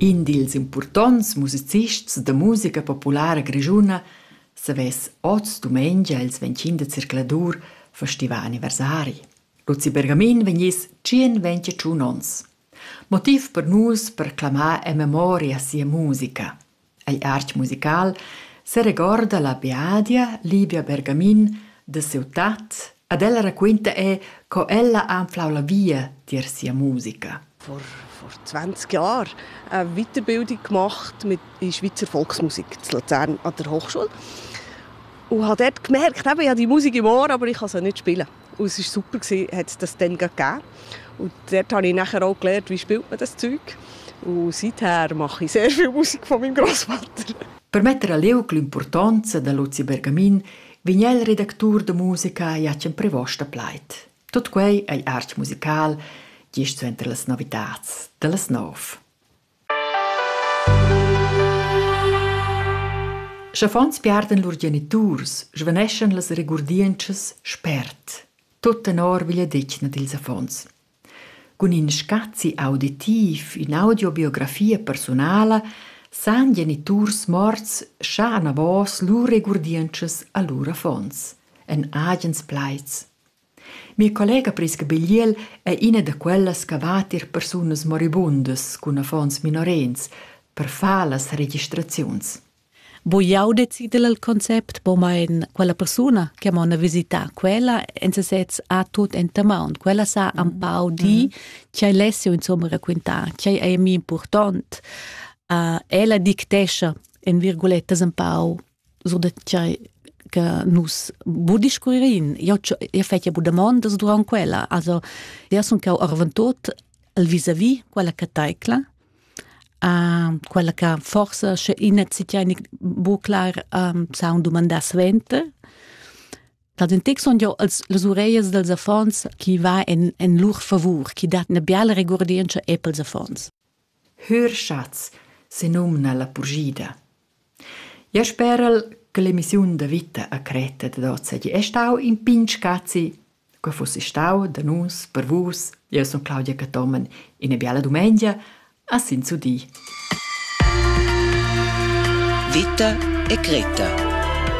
In dils impurtonts musicists da musica populara grischuna savess oz dumengia ils 25 de circladur festival anniversari. Luzi Bergamin vegniss 121 ons. Motiv per nus per clamar en memoria sia musica. Ei artg musical seregorda la biadia Livia Bergamin da siu tat ed ella raquinta era co ella ha anflau la via tier sia musica. vor, vor 20 Jahren eine Weiterbildung gemacht mit in Schweizer Volksmusik in Luzern an der Hochschule und habe dort gemerkt, eben, ich habe die Musik im Ohr, aber ich kann sie nicht spielen. Und es war super, gewesen, hat es das dann gegeben. Und dort habe ich nachher auch gelernt, wie spielt man das Zeug. Und seither mache ich sehr viel Musik von meinem Großvater. Per metter a leuc l'importanza da Luzi Bergamin vegn el redactur da musica Jacen Prevosta pleit. Tot quei ei arch musical, gist suenter las novitats, dallas nov. Sch'affons piardan lur geniturs, svaneschan las regurdientschas spert. Tut tenor vigliadetgna dils affons. Cun in scazi auditiv, ün'audibiografia persunala san geniturs morts schar anavos lur regurdientschas a lur affons, en agens plaids. Mia collega Prisca Bigliel è ina da quellas che va tier persunas moribundas cun affons minorens per far las registraziuns. Bu jau decider il concept, po mein quella persuna che m'ha visità quella en sesez ha tut enta maun. Quella sa un pau dir ch'ei lessio insomma raquintar, ch'ei ei mi important. Uh, ella dictescha en virgulettas un pau sur da tgei che nus bu discurririn. Io io fetja bu damondas durant quella. Also, io sun cau arventot al vis-a-vis quella che taicla, uh, quella che forse sche ina zitja bu clar um, saun dumandar svente. Dat in tec son jo als las ureias dels affons chi va en, en lur favur, chi dat na biala regurdientscha e pels affons. Hörschatz senumna la purschida. Ja spera'l che l'emissiun da vita a Creta dad hoz seigi e stau in pign scazi. Quei fussi stau da nus, per vus. Jeu sun Claudia Cathomen, ina biala dumengia, a Sinsudi. Vita e Creta